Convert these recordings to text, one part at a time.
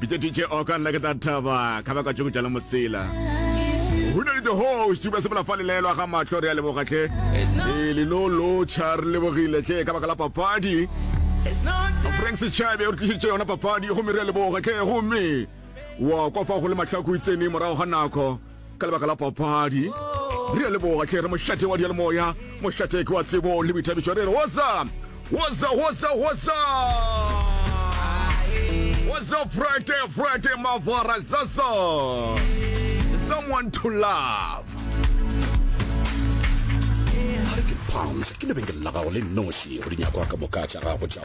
Bitša DJ Oka nna ke tla thaba ka baka tšoko tša le mosela Go na le the host ba sepela fa lelelo ga mahlo re a leboga tle e le lo lo cha re lebogile tle ka baka la papadi Frank Sechabe o re tlišitše yona papadi gomme re a leboga tle gomme wa kwa fa go le mahlaku itsene morago ga nako ka lebaka la papadi re a leboga tle re mošate wa dialemoya mošate ke wa tsebo le boithabišo re re woza woza woza woza woza frete frete mavara zaza someone to love a re ke palms ke lebenkele la gago le noši go dinyakwa ka moka tša gago tša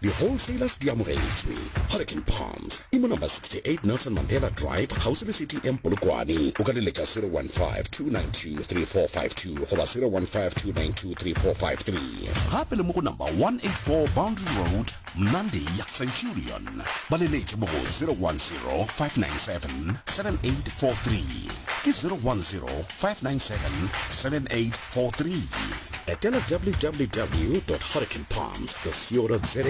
Di wholesalers di amogetšwe. Hurricane Palms e mo number 68 Nelson Mandela Drive kgauswi le City Inn Polokwane. O ka di letša 0152923452 goba 0152923453. Gape le mo go number 184 Boundary Road, Mnandi, Centurion. Ba le letše mo go 0105977843 ke 0105977843. Etela www. Hurricane Palms. Buscosio.za,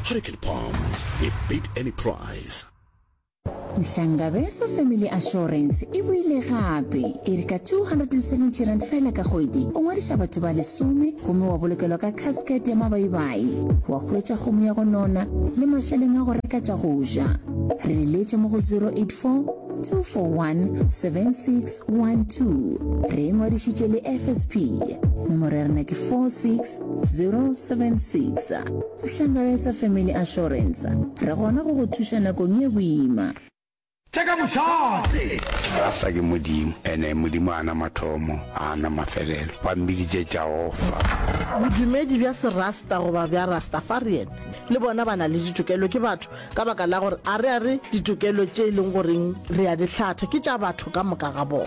Hurricane Palms, we beat any price. Nhlangabeza Family Assurance e boile gape e re ka 270 rand fela ka kgwedi o ngwadiša batho ba lesome gomme wa bolokelwa ka casket ya mabaibai wa hwetša kgomo ya go nona le mašeleng a go reka tša go ja re leletše mo go 084 241 7612 re e ngwadišitše le fsp nomoro ya rena ke 46 076 Hlangaesa Family Assurance, re gona go go thuša nakong ye boima. Tšeka mošate! Rasa ke Modimo, ene Modimo a na mathomo, a na mafelelo. Ba mmiditše Jaofa. Bodumedi bja Serasta goba bja Rastafarian le bona ba na le ditokelo, ke batho. Ka baka la gore a re a re ditokelo tše e leng goreng re a di hlatha ke tša batho ka moka ga bona.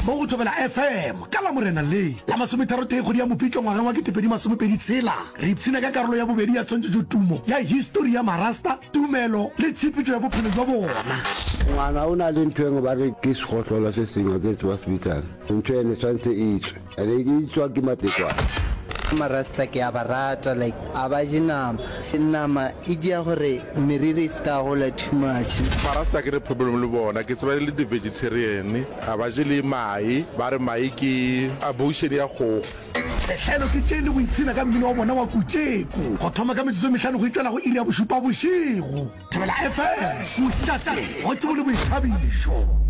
Mo go Thobela FM ka Lamorena le la masometharotee kgwedi ya Mopitlo ngwaga wa ketepedi masomepedi tshela, re ipshina ka karolo ya bobedi ya tshwantšhetšo tumo ya histori ya Marasta, tumelo le tshepetšo ya bophelo bja bona. Ngwana o na le ntho engwe ba re ke segohlolo se sengwe ke tseba se bitsang ntho ene tshwanetse e tswe. Re ke tswa ke matekwane. marasta ke a ba rata like a ba je nama nama e dia gore meriri e se ka gola too much marasta ke re problem le bona ke tseba e le di-vegetarian a ba je le mae ba re mae ke abortion ya kgogo Sehlelo ke tše le go ipshina ka mmino wa bona wa Kutšeko go thoma ka metsotso e mehlano go itšwela go iri ya bošupa bošego. Thobela FM, Kušate, go tšebo le boithabišo.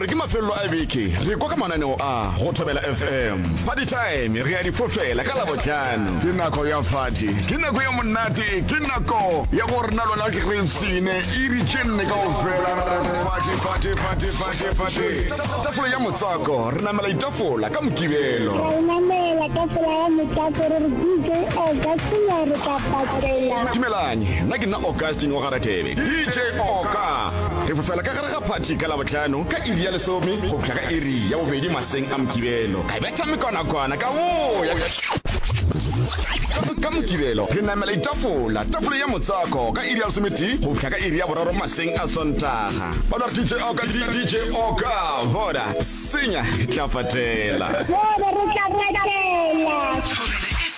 gore ke mafelelo a beke re kwa ka mananeo a go thobela fm party time re ya difofela ka labotlhano ke nako ya fati ke nako ya monate ke nako ya go rena lona re tsene iri tše nne ka ofela tafole ya motswako re namela itafola ka mokibelo re namela tafola ya motswako re re dj o ka senyare dumelang nna ke nna augustine wa garatebe dj oka re fofela ka gare ga phathi ka labotlhano ka iri ya lesome go fihla ka iri ya bobedi maseng a mokibelo ka betha mekonakwana ka boya ka mokibelo re namela itafola tafole ya motswako ka iri ya lesometi go fihla ka iri ya boraro maseng a sontaga ba ba dj oka dj oka voda senya tlafatela